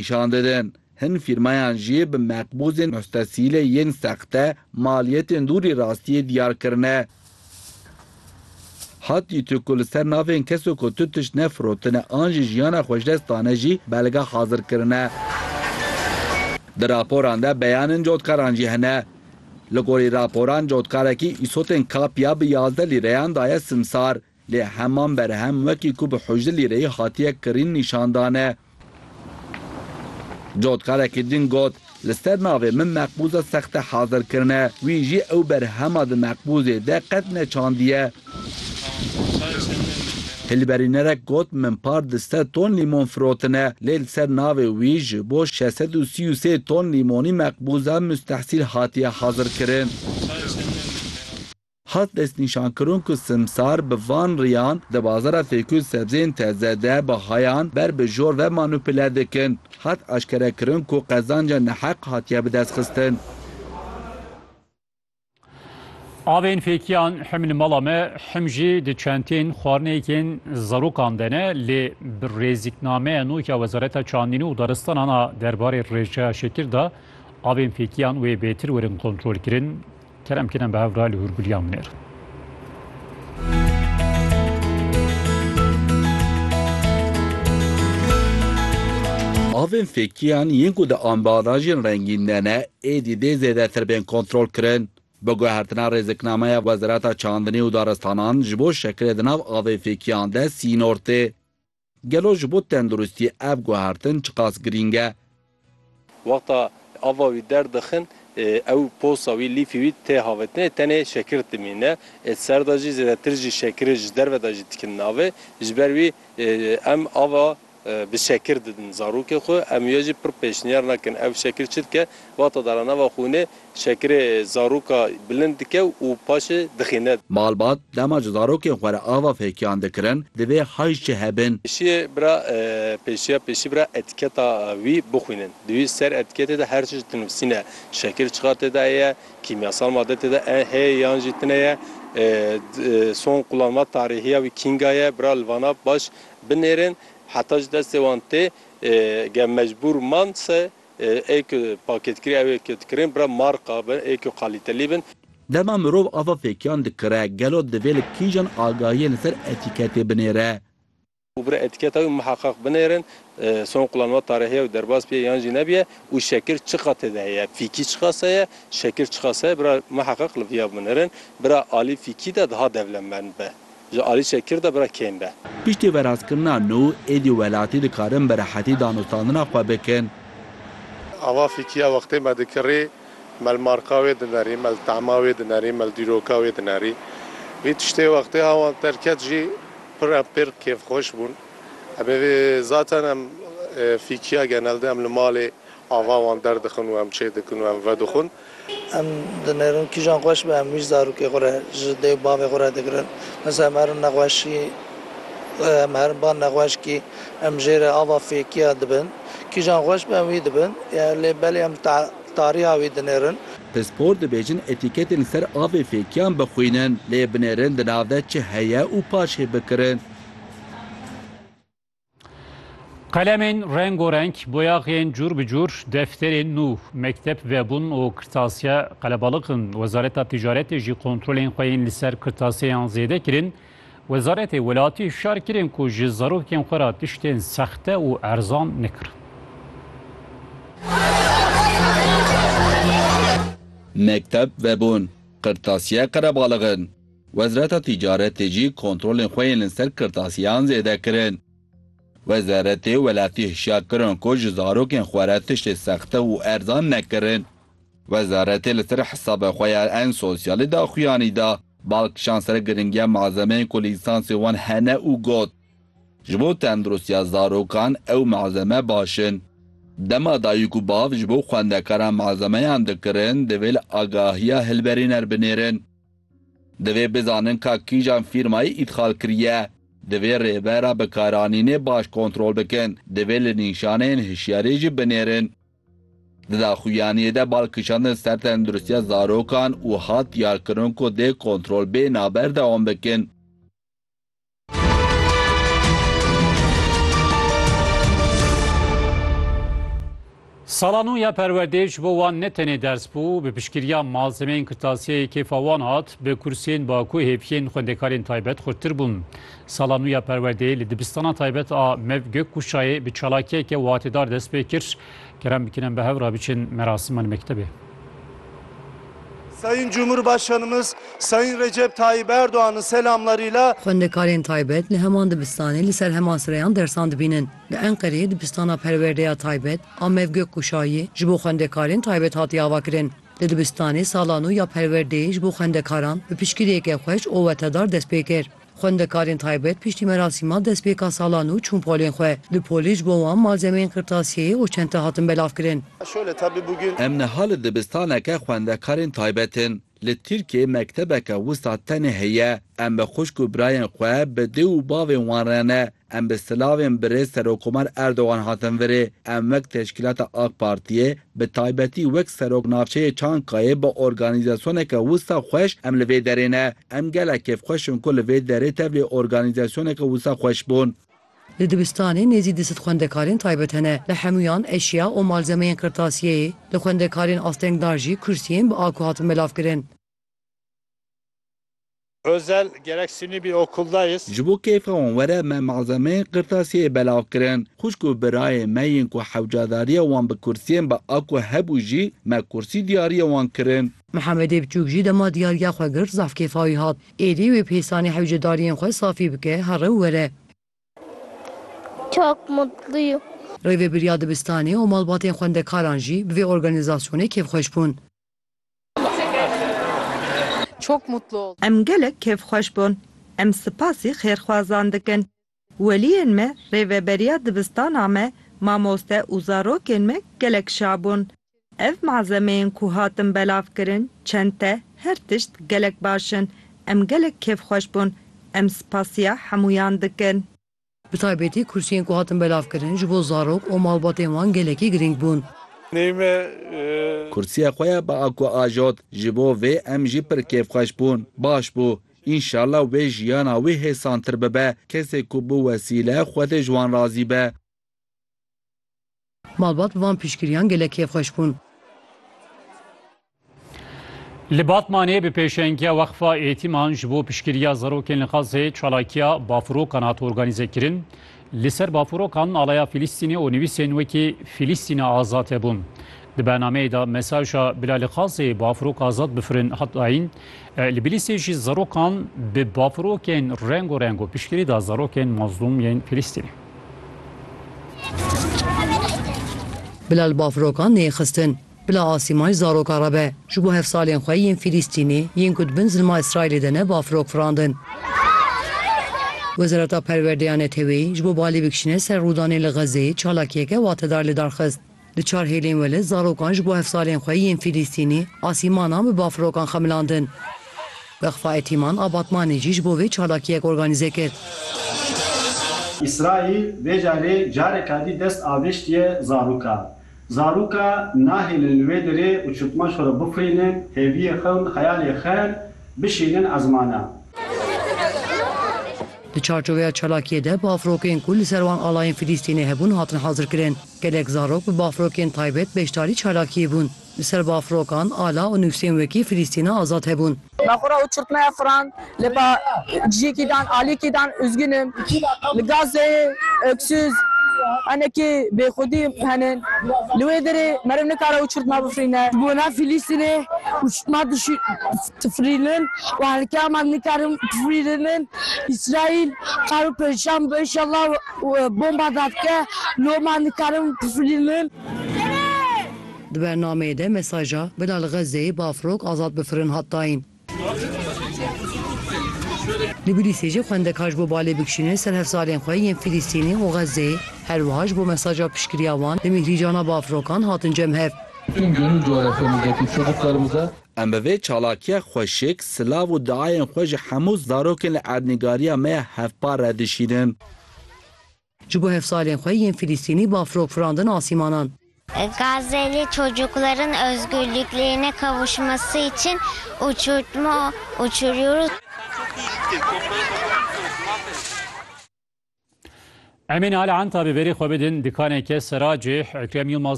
Nîşan didin, hin fîrmayan jî bi meqbûzên mustesîlê yên sexte maliyetên dûrî rastiyê diyar kirine. Ha dîtu ku li ser navên keso ku tu tişt ne firotine an jî jiyana xwe ji dest dane jî belge hazir kirine. Di raporan de beyanên cotkaran jî hene. Li gorî raporan cotkarekî îsotên kapya bi yazdeh lîreyan daye simsar. Lê heman berhem wekî ku bi hojilî re hatiye kirîn nîşan dane. Cotkarekî din got, Li ser navê min meqbûza sexte hazir kirine. Wî jî ew berhema di meqbûzê de qet neçandiye. Hilberînerek got, Min par di sed ton lîmon firotine, lê li ser navê wî ji bo şeş sed û sî û sê ton lîmonî meqbûza mustehsîl hatiye hazirkirin. Hat destnîşankirin ku simsar bi van riyan di bazara fêkû û sebzeyên teze de bahayan ber bi jor ve manupile dikin. Hat eşkerekirin ku qezanca neheq hatiye bidestxistin. Avên fêkiyan him li mala me him jî di çentên xwarineyekên zarokan de ne lê bi rêzîknameya nûk ya Wezareta Çandînû û Daristanan a derbarê rêjeya şekir de avên fêkiyan wê bêtir werin kontrolkirin. Kerem kî ne bi hev ra li hûrgulîya min ir. Avên fêkiyan yên ku di ambalajên rengîn de ne êdî dê zêdetir bên kontrolkirin. Bi guhertina rêziknameya Wezareta Çandinê û Daristanan ji bo şekilê di nav avên fêkiyan de sînor tê. Gelo ji bo tenduristî ev guhertin çiqas girîng e? Wexta ava wî derdixin ew posa wî, lîfê wî tê havetinê tenê şekir dimîne. Ê ser de jî zêdetir jî şekirê ji derve de jî dikin navê. Ji ber wî em ava bi şekir didin zarokê xwe. Em wê jî pir pêşniyar nekin. Ew şekir çi dike? Wexta daranava xûnê Şekirê zaroka bilind dike û paşê dixîne. Malbat, dema ji zarokên xwe re ava fêkiyan dikirin, divê heyş jî hebin. Pêşiyê bira pêşiya pêşî bira etiketa wî bixwînin. Di wî ser etiketê de her tişt dinivîsîne. Şekir çiqa tê de heye, kîmyasal made tê de heye yan jî tine ye. Son qulanma tarîhiya wî kînga ye. Bira li vana baş binêrin. Heta ji destê wan tê. Ge mecbûr man se Ê ku pakêtkirî ew ê ku dikirên bira marka bin, ê ku qalîtelî bin. Dema mirov ava fêkiyan dikire, gelo divê li kîjan agahiyên li ser etîketê binêre? Û bira etîketa wî miheqeq binêrin, son qulan wa tare heye û derbas bîye yan jî nebîye û şekil çiqa têde heye, fîkî çiqas heye, şekil çiqas heye, bira miheqeq li vîya binêrin. Bira alî fîkî de diha devlemend be. Ji alî çekir de bira kêm be. Piştî veraskirina nû, êdî welatî dikarin bi rehetî danûstandina xwe bikin. Ava fîkîya wextê me dikirî, me li marka wê dinerî, me li tema wê dinerî, me li dîroka wê dinerî. Vî tiştê wextê ha wan derket jî pir em pêr kêfxweş bûn. Em ê vê zaten em fîkîya genelde em li malê, Ava wan derdixin û em çêdikin û em vedixwin. Em dinêrin kîjan xweş be, em wî ji zarokê xwe re, ji dê û bavê xwe re digirin. Mesela em herin nexweşî, em herin ba nexweşkî, em jê re ava fêkiya dibin. Kîjan xweş be em wî dibin. Lê belê em tariha wî dinêrin. Pispor dibêjin etîketên li ser avê fêkiyan bixwînin. Lê binêrin di nav de çi heye û paşê bikirin. Qelemên rengorenk, boyaxên cûr bi cûr, defterên nû, mekteb vebûn û kirtasiya qelebalık in. Wezareta Ticaretê jî kontrolên xwe yên li ser kirtasiyeyan zêde kirin. Wezaretê welatî hişyar kirin ku ji zarokên xwe re tiştên sexte û erzan nekirin. Mekteb vebûn, kirtasiye qelebalık in. Wezreta Tîcaretê jî kontrolên xwe yên li ser kirtasiyan zêde kirin. Wezeretê welatî hişyar kirin ku ji zarokên xwe re tiştê sexte û erzan nekirin. Wezeretê li ser hesabê xwe ya En Sosyalî daxuyanî da, bal kişand ser giringiya malzemeyên ku lîsansên wan hene û got, Ji bo tenduristiya zarokan ew malzeme baş in. Dema dayik û bav ji bo xwendekaran malzemeyan dikirin, divê li agahiya hilberîner binêrin. Divê bizanin ka kîjan fîrmayî îdxal kiriye. Divê rêbera bikaranînê baş kontrol bikin. Divê li nîşaneyên hişyariyê jî binêrin. Di daxuyaniyê de bal kişandin ser tenduristiya zarokan û hat diyarkirin ku dê kontrol bê navber dewam bikin. Sala nû ya perwerdê ji bo wan ne tenê ders bû, bi piştgiriya malzemeyên kirtasiyeyê kêfa wan hat, bi kursiyên baku hêviyên xwendekarên taybet xurttir bûn. Sala nû ya perwerdê li dibistana taybet a Mev Gökkuşayê bi çalakiyeke watêdar dest pê kir. Kerem bikinin bi hev re biçin merasima li mektebê. Sayın Cumhurbaşkanımız Sayın Recep Tayyip Erdoğan'ın selamlarıyla. Xwendekarên taybet li heman dibistanê li ser heman sireyan dersan dibînin. Li Enqereyê dibistana perwerdeya taybet Amev Gökkuşayî ji bo xwendekarên taybet hatiye avakirin. Di dibistanê sala nû ya perwerdeyê ji bo xwendekaran bi piştgiriyeke xweş û wetedar dest pê kir. Xwendekarên taybet piştî merasîma destpêka salan û çûn polên xwe. Di polê ji bo wan malzemeyên qirtasiyeyê û çente hatin belavkirin. Em niha li dibistaneke xwendekarên taybet in. Li Tirkiyeyê mektebeke wisa tenê heye. Em bi xwişk û birayên xwe, bi dê û bavên wan re ne. Em bi silavên birêz Serokomar Erdogan hatin virê. Em wek teşkîlata AK Partiyê, bi taybetî wek Serok Navçeyê Çankayê bi organîzasyoneke wisa xweş em li vê derê ne. Em gelek kêfxweş in ku li vê derê tevlî organîzasyoneke wisa xweş bûn. Li dibistanê nêzî du sed xwendekarên taybet hene. Li hemûyan eşya û malzemeyên qirtasiyeyê, li xwendekarên astengdar jî kursiyên bi aku hatin belavkirin. Özel, Gerek sînî bî okuldayîz. Ji bo keyfa wan were me malzemeyên qirtasiyeyê belav kirin. Xwişk û birayên me yên ku hewcadariya wan bi kursiyên bi a ku hebû jî me kursî diyariya wan kirin. Mihemedê biçûk jî dema diyariya xwe girt zaf keyfa wî hat. Êdî wê pêsanî hewcedariyên xwe safî bike here û were. Çok mutluyum. Rêvebiriya dibistanê û malbatên xwendekaran jî bi vê organîzasyonê kêfxweş bûn. Em gelek kêfxweş bûn. Em sipasî xêrxwazan dikin. Weliyên me, rêveberiya dibistana me, mamoste û zarokên me gelek şa bûn. Ev malzemeyên ku hatin belavkirin, çente, her tişt gelek baş in. Em gelek kêfxweş bûn. Em sipasiya hemûyan dikin. Bi taybetî kursiyên ku hatin belavkirin ji bo zarok û malbatên wan gelekî girîng bûn. Kursiya xwe ya bi Ako ajot, ji bo vê em jî pir kêfxweş bûn. Baş bû. Înşallah wê jiyana wî hêsantir bibe. Kesê ku bi wesîle Xwedê ji wan razî be. Malbat van piştgiriyan gelek kêfxweş bûn. Li Batmanê bi pêşengiya Weqfa Êtîman ji bo piştgiriya zarokên li Xazê çalakiya bafirokan hat organîzekirin. Li ser bafirokan alaya Fîlîstînê û nivîsên wekî Fîlîstîna azad hebûn. Di bernameyê de mesaja bila li Xazê bafirok azad bifirin hat dayîn. Li Bilîsê jî zarokan bi bafirokên rengorengo piştgirî da zarokên mazlûm yên Fîlîstînê. Bila li bafirokan nêxistin. Bila asîma ji zarokan re be. Ji bo hevsalên xwe yên Fîlîstînê, yên ku di bin zilma Îsraîlê de ne bafirok firandin. Wezareta Perwerdeya Neteweyî ji bo balê bikişîne ser rûdanê li Xezzeyê çalakiyeke watedar lidarxist. Di çar hêlên wele zarokan ji bo hevsalên xwe yên Fîlîstînî asîmanan bi bafirokan xemilandin. Weqfa Etîman a Batmanê jî ji bo vê çalakiyek organîze kir. Îsraîl vê carê careka dî dest avêştiye zarokan. Zaroka nahêlin li wê derê û çûtman xwe re bixwînin, hêviyê xewn, xeyalê xewn bişînin ezmanan. Di çarçoveya çalakiyê de bafirokên ku li ser wan alayên Fîlîstînê hebûn hatin hazirkirin. Gelek zarok bi bafrokên taybet beşdarî çalakiyê bûn. Li ser bafrokan ala û nûsên wekî Filîstîna Azad hebûn. Nexwra û çirtmeya firan lê ba cîkî dan, alîkî dan Üzgün im, li Gazze'yê öksüz, henekî bêxwedî hene. Li wê derê meriv nikare û çirtma bifirîne. Ji bona Filîstînê û çirtma difirînin û herikê heman nikarin bifirînin. Îsraîl kar û perişan bibe înşallah. Bomba vedike, loma nikarin bifilînin. Di bernameyê de mesaja Bila li Xezzeyê bafrok azad bifirin hat dayîn. Li Bilîsê jî xwendekar ji bo balê bikişînin ser hevzalên xwe yên Filîstînî û Xezzeyê, her wiha ji bo mesaja piştgiriya wan li mîhrîcana bafrokan hatin cem hev. Em bi vê çalakiya xweşik, silav û diayên xwe ji hemû zarokên li erdnîgariya me ya hevpar re dişînin. Ji bo hevsalên xwe yên Filistînî bafirok firandin asîmanan. Gazeli çocukların özgürlüklerine kavuşması için uçurtma uçuruyoruz. Emîn Al Entabi berî xwe bidin dikaneke sera cih, Ekrem Yilmaz.